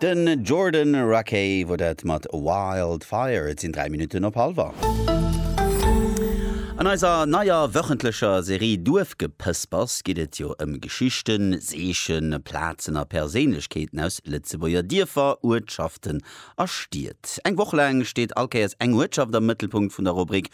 Den Jordan Rakei wor dat mat Wild Fire. Et sinn 3 Minutten op halwer. An eiser neier wöchentlecher Serie Duerfgepëspers geet et jo ëm Geschichten, Seechen, Plazen a Perséinlechkeeten aus Lëtzebuerger Dierfer, Uertschaften a Stied. Eng Woch laang steet all Kéiers eng Uertschaft am Mëttelpunkt vun der Rubrik.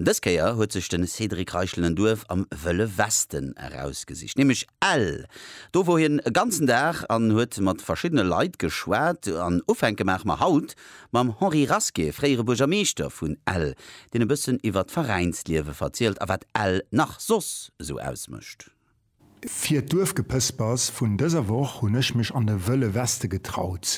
Dës Kéier huet sech de Cédric Reichel en Duerf am Wëlle Westen erausgesicht, nämlech Ell. Do wor hien e ganzen Dag an huet mat verschiddene Leit geschwat. An ufänke maache mer haut mam Henri Rasqué, fréiere Buergermeeschter vun Ell, deen e bëssen iwwert d'Veräinsliewe verzielt a wat Ell nach soss esou ausmécht. Fir d'Duerfgepëspers vun dëser Woch hunn ech mech an de Wëlle Weste getraut,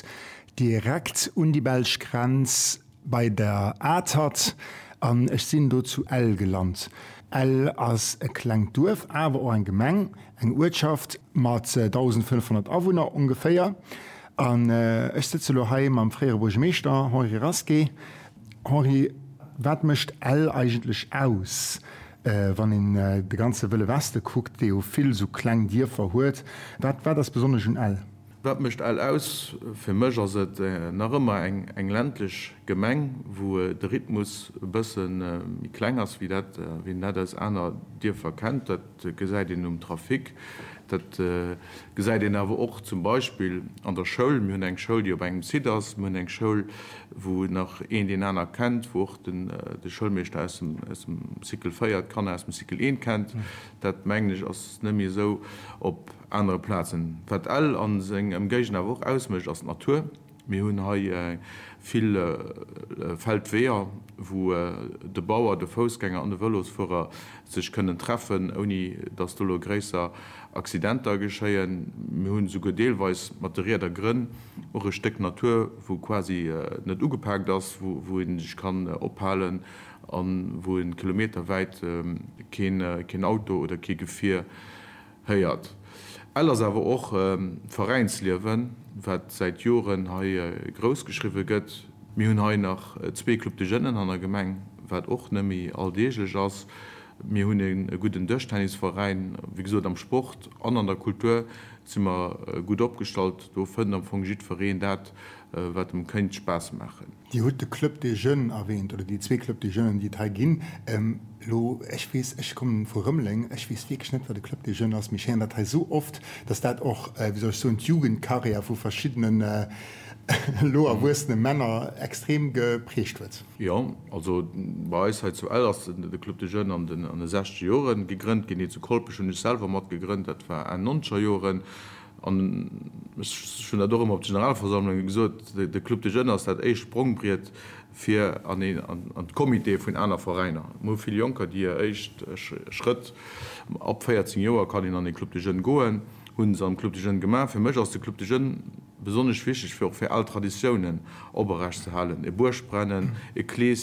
direkt un déi belsch Grenz bei der Atert, an ech sinn do zu Ell gelant. Ell ass e klengt Duerf, awer och eng Gemeng, eng Uertschaft mat 1.500 Awunner ongeféier. An ech sëtze lo hei mam fréiere Buergermeeschter Henri Rasqué. Henri, wat mécht Ell eigentlech aus? Wann een de ganze Wëlle Weste kuckt, dee jo vill esou kleng Dierfer huet, wat wat ass besonnesch un Ell? Wat mécht Ell aus? Fir mech ass et nach ëmmer eng ländlech Gemeng, wou de Rhythmus e bësse méi kleng ass, wéi dat wéi een dat aus aner Dierfer kennt. Dat gesäit een um Trafic, dat gesäit een awer och zum Beispill an der Schoul. Mir hunn eng Schoul, déi op engem Site ass, mir hunn eng Schoul, wou nach een deen aner kennt, wou. de Schoulmeeschter aus dem Cycle 4 d'Kanner aus dem Cycle 1 kennt, dat mengen ech ass net méi esou op anere Plazen. Wat Ell a seng Emgéigend awer och ausmécht ass d'Natur. Mir hunn hei vill Feldweeër, wou de Bauer, de Foussgänger an de Vëlosfuerer sech kënnen treffen, ouni datt do elo gréisser Accidenter geschéien. Mir hunn esouguer deelweis mat de Rieder Grënn. Och e Stéck Natur, wou quasi net ugepaakt ass, wou ee sech kann ophalen a wou ee kilometerwäit keen Auto oder kee Gefier héiert. Ell ass awer och Veräinsliewen, wat säit Joren hei grouss geschriwwe gëtt. Mir hunn hei nach zwee Club de Jeunen an der Gemeng, wat och net méi alldeeglech ass. Mir hunn e gudden Dëschtennisveräin. Wéi gesot, am Sport an an der Kultur si mer gutt opgestallt. Do fënnt am Fong jiddwereen dat, wat em kéint Spaass maachen. Dir hutt de Club des Jeunes erwähnt, oder déi zwee Club des Jeunes, déi et hei ginn. Elo, ech weess, ech kommen vu Rëmeleng, ech weess wierklech net, wat e Club des Jeunes ass, mee ech héieren dat hei esou oft, dass dat och, wéi soll ech soen, d'Jugendkarriär vu verschiddenen elo erwuessene Männer extrem geprägt huet. Jo, also bei eis hei zu Ell ass de Club de Jeunes an de 60 Joren gegrënnt ginn. Hie zu Kolpech hunn ech selwer mat gegrënnt, dat war Enn nonzeger Joren. An ech hunn dat och ëmmer op de Generalversammlunge gesot, de Club de Jeunes ass dat éischt Sprongbriet fir an een an d'Comitéë vun aner Veräiner. Mir hu vill Jonker, déi hir éischt Schrëtt, ab 14 Joer kann een an ee Club de Jeunes goen, hu se am Club de Jeunes gemaach. Fir mech ass de Club de Jeunes. Besonnesch wichteg wier och fir al Traditiounen oprecht ze halen, e Buergbrennen, e Kleeschen,